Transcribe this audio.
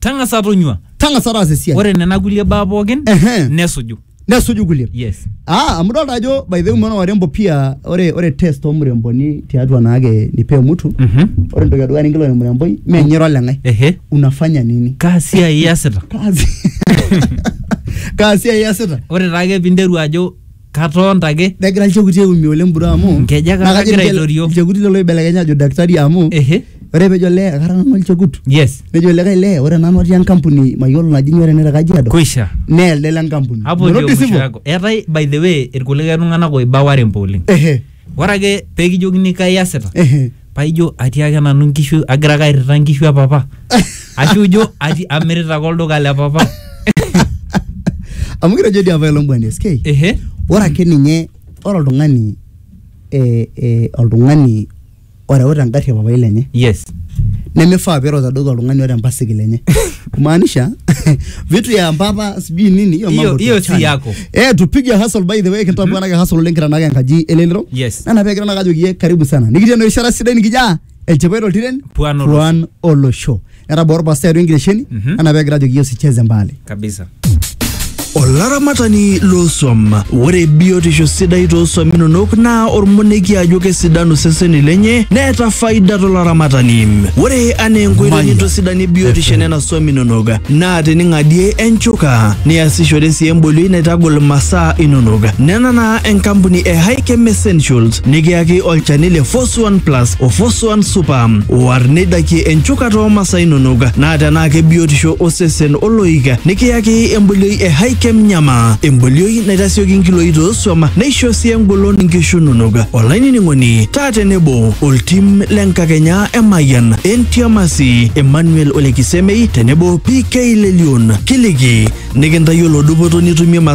tang'asa tonyua tang'asa taasa esiai ore nena kulie baa pookin Ehe. nesuju nesuju kulie yes Ah, amu dolta ajo by the way mwana warembo pia ore ore test omuremboni tiatua naake nipee mtu Mhm. ore entoki edukuya ninkilikuan emuremboi menyira oleng'ai ehe unafanya nini kaa siai iasita kazi kaa siai iasita ore taake pinteru ajo katoonta ake negira ilchekuti aiumia oleng bro amu Nkejek naa kajo kagira ninche- aitorio. ilchekuti lelo oibelekenya ajo daktari amu ehe ore pejo lee akara nanu olchekut yes nejo likae lee ore nanu atii enkampuni mayiolo naji nyoo tene te kajiado kuisha nee elde le nkampuni hapo ndio Nairobi mwisho sivyo? yako eetae by the way irkulikae tung'anak oiba warembo oleng ehe Ore ake pee kijokini kai iasita Ehe. paa ijo atii ake nanu nkishu agira ake airrita nkishu e papa ashu ijo ati amirita ake olduka le papa. amu kitejo dii apailong bwana SK Ehe. ore ake ninye ore oltung'ani eh, eh, oltung'ani oreuta engarri e papai lenye yes nemifaa piireuta adoki oltung'ani oota empasikil enye kumaanisha vitu ya mpapa sijui nini hiyo Hiyo- mambo hiyo si tuachane. yako. eh tupige hustle by the way kintabu anake hustle oleng kitanaka enkaji elelero Yes. nana pee kitanaka ajoki ye karibu sana nikitii enoshi rishata sidai nikijaa elchipai toltiren Puan olosho. puan olosho etabaa orpastai atua enkitesheni Mhm. anaa pegira ajoki yesu cheze mbali kabisa olaramatani looswam ore biotisho sidai tooswam inonok naa ormoneki ajo kesidanu seseni lenye neeta faida tolaramatani ore anaa enkoitoi Maya. nintosidanie biotisho enena swam inonok naa tening'adie enchuka niasishore sii embolioi naitagol masaa inonok nena naa enkampuni e Hikem Essentials nikiyaki olchani le Fos Suan Plus o Fosuan Super. War neidakie enchukata oo masaa inonok naa tenaa kebiotisho osesen oloik nikiyaki embolioi e Hikem Nyama. Embolioi naitasioki nkiloi toosuam neisho sii engolon nkishu inonok. Olainining'oni taa tenebo oltim le nkakenya e Mayian, Entiamasi, Emmanuel Olekisemei tenebo PK Lelion. Kiliki nikintayiolo dupoto nitumie masaa